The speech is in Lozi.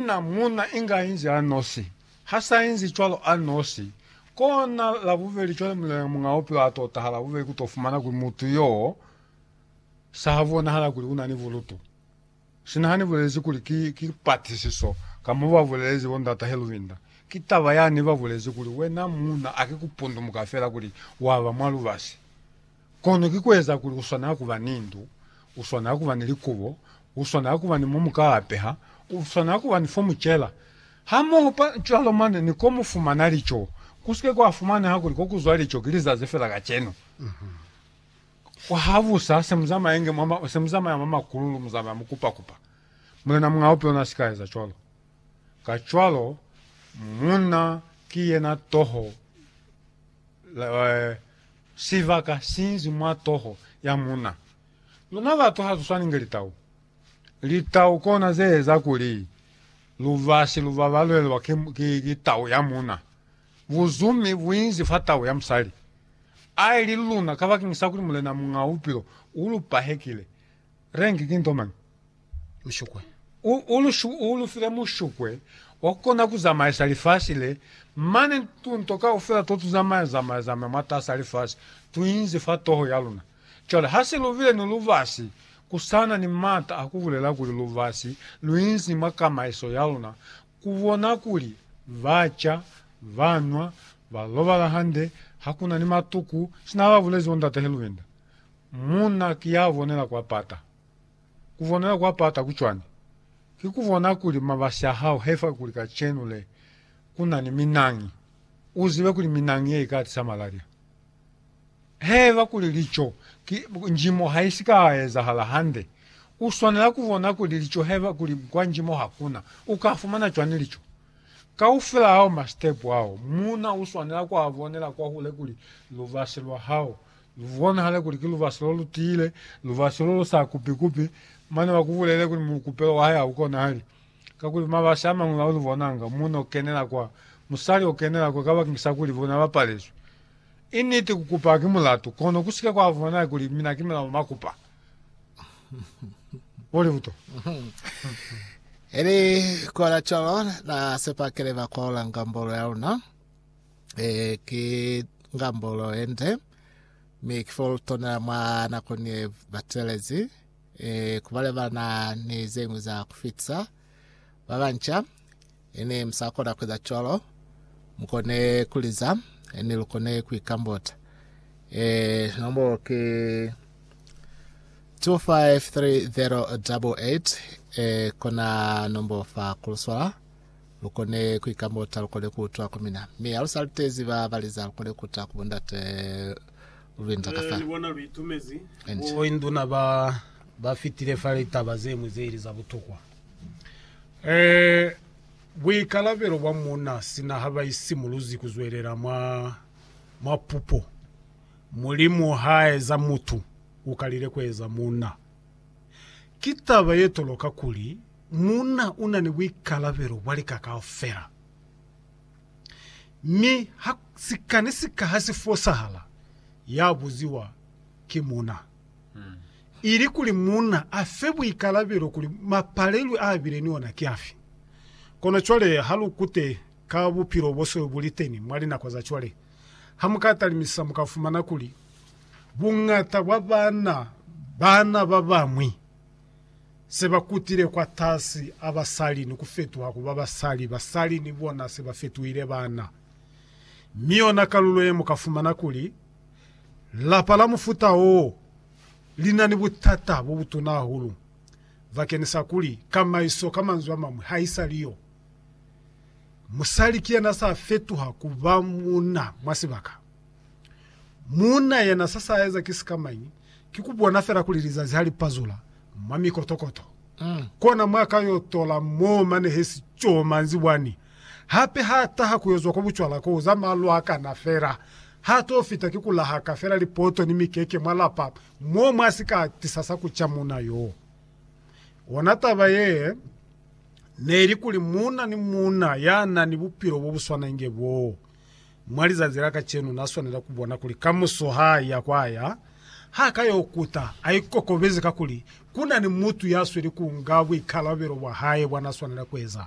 Na muuna inga inzi anosi. Ha sa inzi cwalo anosi, kona labubeli cwale muleneña muñaa bupilo a to taha labubeli ku to fumana kuli mutu yoo sa ha bonahala kuli una ni bulutu. Sina hani bulezi kuli ki, ki patisiso, ka mo ba bulezi bo Ndata Helwinder. Ki taba yani ba bulezi kuli wena muuna a ki ku pundumuka fela kuli wa ba mwa lubasi. Kono ki kueza kuli uswanela kuba ni ndu, uswanela kuba ni likubo, uswanela kuba ni mo mukaa peha, uswanela kuba ni fo mucela, hamoho pa cwalo mane ni ko mufumana lico. Kusike kwa fumaneha kuli ko kuzwa lico ki lizazi fela kacenu. Habusa se muzamaenge mwa ma, se muzamaya mwa makululu, muzamaya mukupakupa. Mulena muñaa upi ona sika eza cwalo. Kacwalo, munna ki yena toho, la, eh, Sibaka sinzi mwa toho ya muna. Luna batu hatuswani nge litau. Litau kona zeeza kuli lubasi luba balwelwa ki tau ya muna. Buzumi buinzi fa tau ya musali. Aili luna kabakeng sa kuli Mulena Muñaa Bupilo ulupa hekile. Rengi ki nto mañi? mushukwe. U, u, lu, u lu file mushukwe wa ku kona ku zamaisa lifasi le, mane tunto kaufela to tu zamaya, zamaya, zamaya mwatas'a lifasi, tu inzi fa toho ya luna. Cwale, ha se lu bile ni lubasi, ku sa na ni m'ata a ku bulela kuli lubasi lu inzi mwa kamaiso ya luna, ku bona kuli ba ca, ba nwa, ba lobala hande, ha ku na ni matuku, sina ba bulezi bo Ndate Helwinder. Munna ki ya bonela kwa pata. Kubonela kwa pata ku cwani? Ki kubona kuli mabasi a hao he fa kuli kacenu le ku na ni minangi, u zibe kuli minangi ye i ka tisa malaria. Haiba kuli lico ki njimo ha i si ka ezahala hande, u swanela ku bona kuli lico haiba kuli kwa njimo ha ku na, u ka fumana cwani lico? Kaufela ao masitepu ao, muuna u swanela ku a bonela kwahule kuli lubasi lwa hao Lu bonahale kuli ki lubasi lo lu tiile, lubasi lo lu sa kupi-kupi, mane ba ku bulele kuli mukupelo wa hae ha u konahali. Kakuli mabasi a mañwi a u lu bonanga, munna o kenela kwa, musali o kenela kwa, kabakeñisa kuli bona ba palezwi. I niti, ku kupa ki mulatu, kono ku si ke kwa bonahala kuli mina ki mina ba ba kupa. Bo libuto. Ili kola cwalo, na sepa kili ba kolanga mbolo ya luna. eh, ki ngambolo yende mi kifolutona mwa nako ni batelezi eh, kubalebana ni zengwi za kufitisa babanca ini musakona kueza cwalo mukone kuliza ini lukone kuikambota eh, nombolo ki 253088 eh, kona nombolo fa kuluswala Lukone kuikamota, lukone kuutwa ku mina, mi halusa litezi ba baliza, lukone kuta ku bondate lubinza ka fa. Enje. Bo induna ba ba fitile fa litaba zemwi ze ili za butokwa. E, buikalabelo bwa muuna sina ha ba isimuluzi ku zwelela mwa, mwa pupo, Mulimu ha eza mutu, u kalile ku eza muuna. Ki taba ye toloka kuli, Muuna u na ni buikalabelo bwa lika kaufela, mi ha sika ni sika ha si fosahala, ya buziwa ki muuna. Ili kuli muuna a fe buikalabelo kuli mapalelwi a bile ni ona ki afi. Kono cwale ha lu kute ka bupilo bo so bu li teni mwa linako za cwale, ha mu ka talimisa mu ka fumana kuli buñata bwa baana, baana ba bañwi se ba kutile kwatasi a basali ni ku fetuha ku ba basali, basali ni bona se ba fetuhile baana. Mi yona kalulo ye mu ka fumana kuli, lapa la mufuta wo li na ni butata bo butuna hahulu bakenisa kuli kamaiso ka manzwi a mañwi ha i sa li yo. Musali ki yena sa fetuha ku ba munna mwa sibaka. Muuna yena se sa eza ki sikamañi? Ki ku bona fela kuli lizazi ha li pazula mwa mikotokoto, kona mwa ka yo tola mo mane he si co manzibwani. Hape ha taha ku yo zwa kwa bucwala ko za malwakana fela, ha to fita ki ku lahaka fela lipoto ni mikeke mwa lapa mo mwa si ka tisa sa ku ca muuna yo. Ona taba ye ne li kuli muuna ni muuna ya na ni bupilo bo bu swana inge boo. Mwa lizanzi la kacenu na swanela ku bona kuli kamuso ha ya kwa ya, ha ka yo kuta a ikokobezi kakuli ku na ni mutu ya sweli ku nga buikalabelo bwa hae bwa na swanela ku eza.